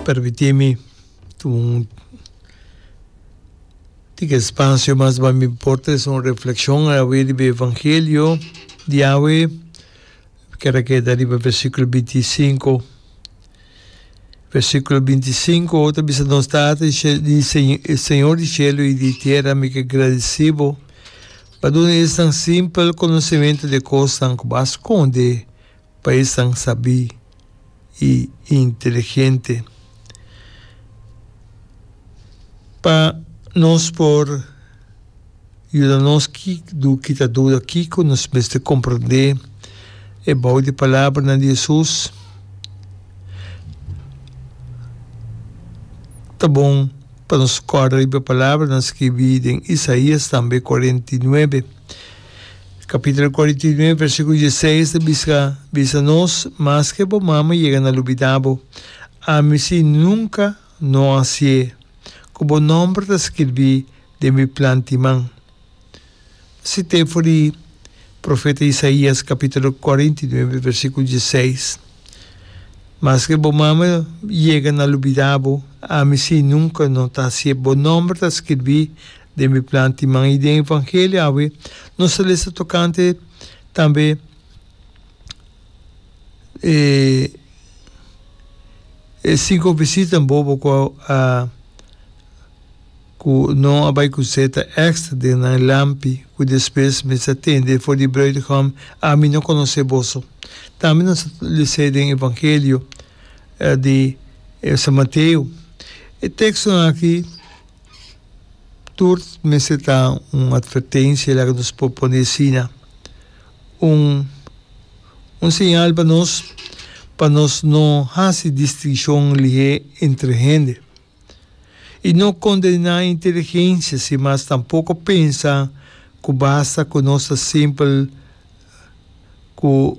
Permití mi ta un tika espasio mas pa mi por ta hasi un reflekshon awe riba e evangelio di awe. Mi kier a keda riba versíkulo binti i sinku. Versíkulo binti i sinku ta bisa nos Tata di shelu di Señor di shelu i di tera mi ke gradisí bo pa duna esnan simpel konosementu di e kosnan ku bo a skonde. Pa esnan sabí i inteligente. Pa nos por yuda nos kita duda kiko nos mester komprendé e bou di palabranan di Hesus, ta bon pa nos kòrda riba e palabranan skirbí den Isaías tambe kuarenta i nuebe. Capitulo cuarenta y nueve versiculo dieseis ta biska, Bisa nos, maske bo mama yega na lubida bo, ami si nunca no a hacié, cu bo nomber ta skirbi den mi plan di man. Cité for di profeta Isaías capitulo cuarenta y nueve versiculo dieseis, Maske bo mama yega na lubida bo, ami si nunca no ta hacié, bo nomber ta skirbi Den mi plan tin man i den evangelio awe nos a lesa tokante tambe e e cinco visitanan bobo ku a ku no a bai ku seta extra den nan lampi ku despues mester a tende for di bruidegom ami no konosé boso. Tambe nos a les'é den evangelio di San Mateo. E tekstonan aki. tur mester ta un atvertensia laga nos por pone asina, un un señal pa nos pa nos no hasi distinshon lihé entre hende i no kondená inteligensia sin mas tampoko pensa ku basta ku nos ta simpel ku.